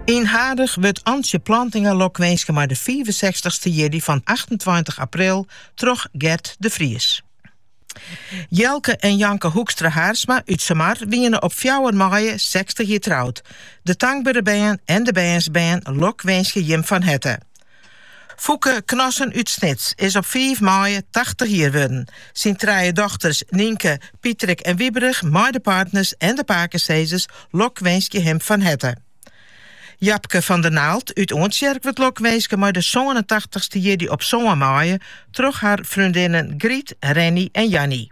Yn Hurdegaryp wurdt Antsje Plantinga lokwinske mei de fiifensechstichste jierdei fan achtentweintich april troch Gerd de Vries. Jelke en Janke Hoekstra Haarsma út Sumar wiene op fjouwer maaie sechstich jier troud. De tankbere bern en de bernsbern lokwinskje jim fan herte. Foeke Knassen út Snits is op fiif maaie tachtich jier wurden. Syn trije dochters Nienke, Pietrik en Wiberich mei de partners en de pakesizzers lokwinskje him fan herte. Japke van der Naald út Oantsjerk wurdt lokwinske mei de sânentachtichste jierdei op sân maaie troch har freondinnen Griet, Renny en Jannie.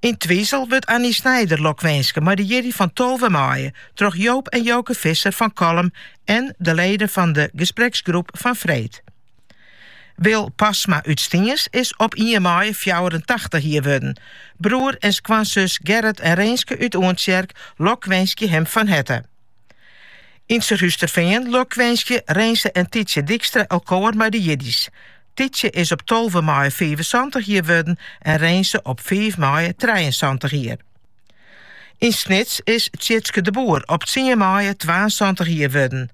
Yn Twizel wurdt Annie Snijder lokwinske mei de jierdei fan tolve maaie troch Joop en Joke Visser fan Kollum en de leden fan de gespreksgroep fan freed. Wil Pasma út Stiens is op ien maaie fjouwerentachtich jier wurden. Broer en skoansus Gerrit en Reenske út Oantsjerk lokwinskje him fan herte. Yn Surhústerfean lokwinskje Reense en Tytsje Dykstra elkoar mei de jierdeis. Tytsje is op tolve maaie fiifensantich jier wurden en Reense op fiif maaie trijeensantich jier. Yn Snits is Tjitske de Boer op tsien maaie twaensantich jier wurden.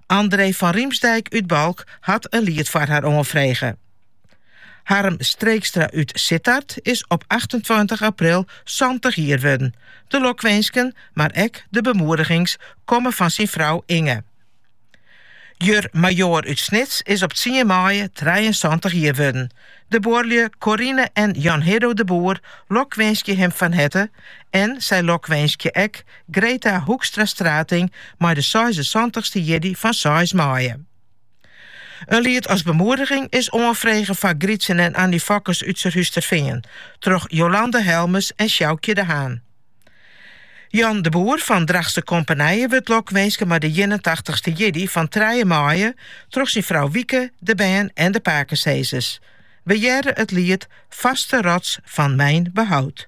André van Riemsdijk út Balk hat in liet foar har oanfrege. Harm Streekstra út Sittard is op achtentweintich april santich jier wurden. De lokwinsken, mar ek de bemoedigings komme fan syn frou Inge. Jur Majoar út Snits is op tsien maaie trijeensantich jier wurden. De buorlju Corine en Jan Hiddo de Boer lokwinskje him fan herte en sy lokwinskje ek Greta Hoekstra Strating mei de seisensantichste jierdei fan seis maaie. In liet as bemoediging is oanfrege foar Grytsen en Annie Fokkes út Surhústerfean troch Jolande Helmes en Sjoukje de Haan. Jan de Boer fan Drachtster Kompanije wurdt lokwinske mei de ienentachtichste jierdei fan trije maaie troch syn frou Wieke, de bern en de pakesizzers. We hearre it liet Vaste rots fan mijn behoud.